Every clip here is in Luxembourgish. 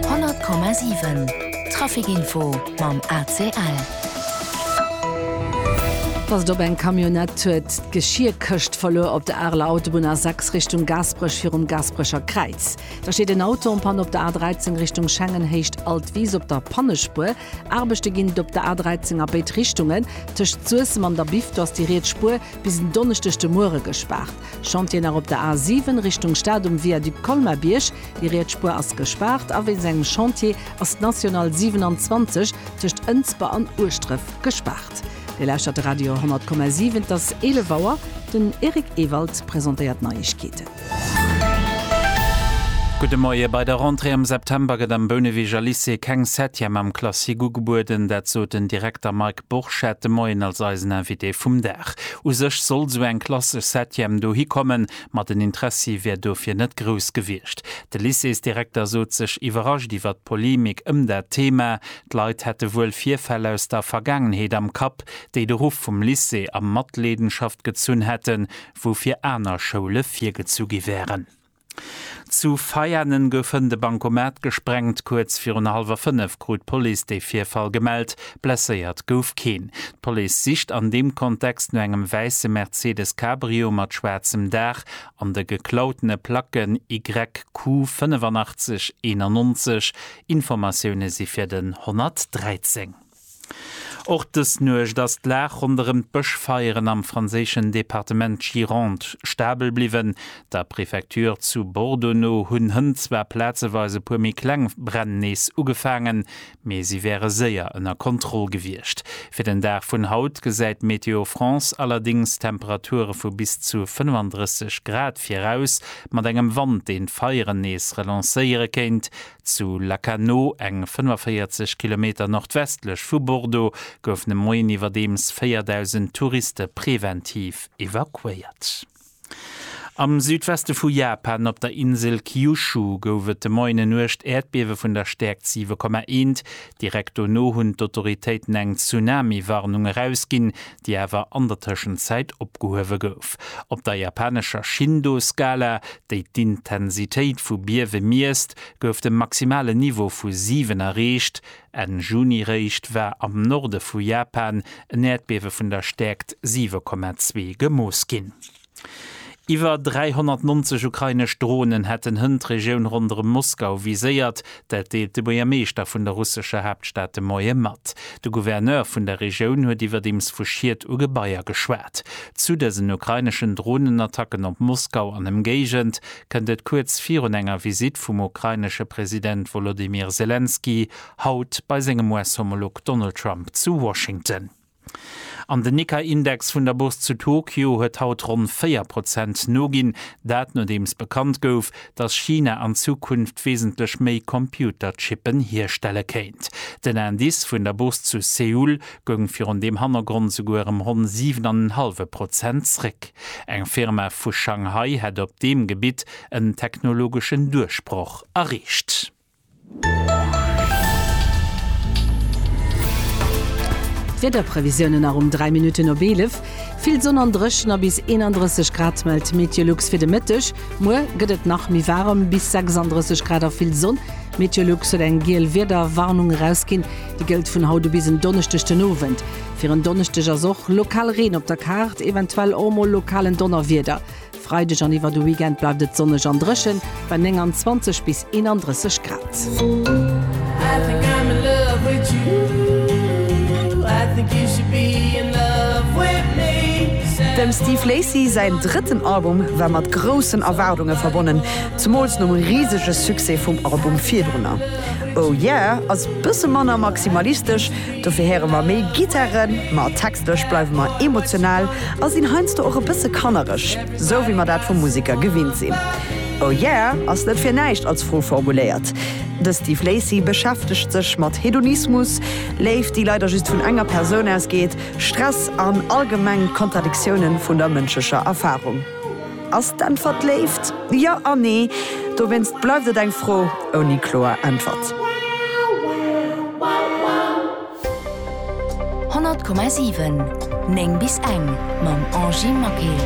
100,7 Trafic Info mam ACL. Dass et op eng Camionnette huet d'Geschierkëscht verluer op der Areler Autobunn A6 Richtung Gaasperech virum Gaasperecher Kräiz. Da steet en Auto en Panne op der A13 Richtung Schengen héicht Alt Wiis op der Pannespuer. Aarbechte ginn et op der A13 a béid Richtungen. Tëscht Suessem an der Biff do ass déi riets Spuer bis en Donneschdeg de Muere gespaart. Chantier nach op der A 7 Richtung Stad um Viaduc Colmar-Bierg. Déi riets Spuer ass gespaart a wéinst engem Chantier ass d'National 27 tëscht Ënsber an Ueschdref gespaart. Dir lauschtert de Radio 10,7. Et ass 11 Auer. Den Eric Ewald presentéiert d'Neiegkeeten. Gudde Moie. Bei der Rentrée am September gëtt am Bouneweger Lycée keng Septième am Classique ugebueden. Dat sot den Direkter Mike. Borchette, Moien als eisen Invité vum Dag. U sech soll sou eng klassesch Septième dohi kommen, ma den Interessi wär dofir net grouss gewiescht. De Lycéesdirekter sot sech iwwerrascht iwwert d'Polemik ëm dat Thema. D'Leit hätte wuel Virfäll aus der Vergaangenheet am Kapp, déi de Ruff vum Lycée a Matleedenschaft gezunn hätten, wou fir aner Schoule virgezu gi wären. Zu Veianen gouf hënt e Bankomat gesprengt. Kuerz virun hallwer fënnef krut d'Police de Virfall gemellt. Blesséiert gouf keen. D'Police sicht an deem Kontext no engem wäisse Mercedes Cabrio mat schwaarzem Daach an de geklautene Placken YQ 85 91. Informatioune si fir den 113. Och dës Nuecht ass d'Lag ronderëm d'Bëschfeieren am franséischen Departement Gironde stabel bliwwen. Der Prefecture zu Bordeaux no hunn Hënn zwar plazeweis e puer méi kleng Bränn nees ugefaangen, mee si wäre séier ënner Kontroll gewiescht. Fir den Dag vun haut gesäit Météo France allerdéngs Temperature vu bis zu 35 Grad viraus, mat engem Wand, deen d'Feieren nees relancéiere kéint. Zu Lacanau, eng 45 Kilometer nordwestlech vu Bordeaux, goufen e Moien iwwerdeems 4.000 Touriste preventiv evakuéiert. Am Südweste vu Japan, op der Insel Kyushu, gouf et de Moien en uergt Äerdbiewe vun der Stäerkt 7,1. Direkt dono hunn d'Autoritéiten eng Tsunami-Warnung erausginn. déi awer an der Tëschenzäit opgehuewe gouf. Op der japanescher Shindo-Skala, déi d'Intensitéit vu Biewe miesst, gouf de maximale Niveau vu 7 erreecht. Enn Juni réischt war am Norde vu Japan en Äerdbiewe vun der Stäerkt 7,2 gemooss ginn. Iwwer 390 ukrainesch Dronen hätten Hënn d'Regioun ronderëm Moskau viséiert. Dat deelt de Buergermeeschter vun der russescher Haaptstad de Moie mat. De Gouverneur vun der Regioun huet iwwerdeems vu Schied u Gebaier geschwat. Zu dësen ukraineschen Dronenattacken op Moskau an Ëmgéigend kënnt et kuerz virun enger Visitt vum ukrainesche President Wolodymyr Selenskyj haut bei sengem US-Homolog Donald Trump zu Washington. An den Nikkei-Index vun der Bourse zu Tokio huet haut ronn 4 Prozent noginn. Dat nodeems bekannt gouf, datt China an Zukunft wesentlech méi Computerchippen hierstelle kéint. Den Indice vun der Bourse zu Seoul goung virun deem Hannergrond souguer ëm ronn 7 an en hallwe Prozent zréck. Eng Firma vu Shanghai hätt op deem Gebitt en technologeschen Duerchbroch erreecht. D'Wiederprevisiounen nach um 3 Minutten op 11, Vill Sonn an dréchen a bis 31 Grad mellt d'Meteolux fir de Mëtteg. Muer gëtt et nach méi waarem, bis 36 Grad a vill Sonn. D'Meteolux huet eng giel Wiederwarnung erausginn, déi gëllt vun haut u bis en Donneschdeg den Owend. Fir en Donneschdeg ass och lokal Reen op der Kaart, eventuell och mol lokalen Donnerwieder. Freideg an iwwer de Weekend bleift et sonneg an dréchen, bei 29 bis 31 Grad. Dem Steve Lacy säin drëtten Album war mat groussen Erwaardunge verbonnen, zemools nom risege Succès vum Album virdrunner. Oh Yeah ass bësse manner maximalistesch, Dofir héiere mer méi Gittaren, ma textlech bleiwe mer emotional a sinn heiansdo och e bësse kannereg, esou wéi mer dat vum Museker gewinnt sinn. Oh yeah ass net fir näischt als Fro formuléiert. De Steve Lacy beschäftegt sech mat Hedonismus, Léift, déi leider just vun enger Persoun ausgeet, Stress an allgemeng d'Kontradiktiounen vun der mënschlecher Erfarung. Ass d'Äntwert Léift? Jo a nee. Dowéinst bleift et eng Fro ouni kloer Äntwert. 100,7 9 bis eng mam Angie Maquet.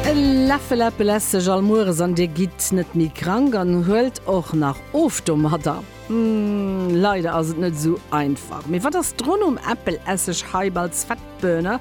E Läffel Äppel ess ech all mueres an dir gitt net méi krank an huelt och nach of domadder? Leider ass et net esou einfach. Mee wat ass d'Ronn um Äppelesseg Heiballs Fettbirner?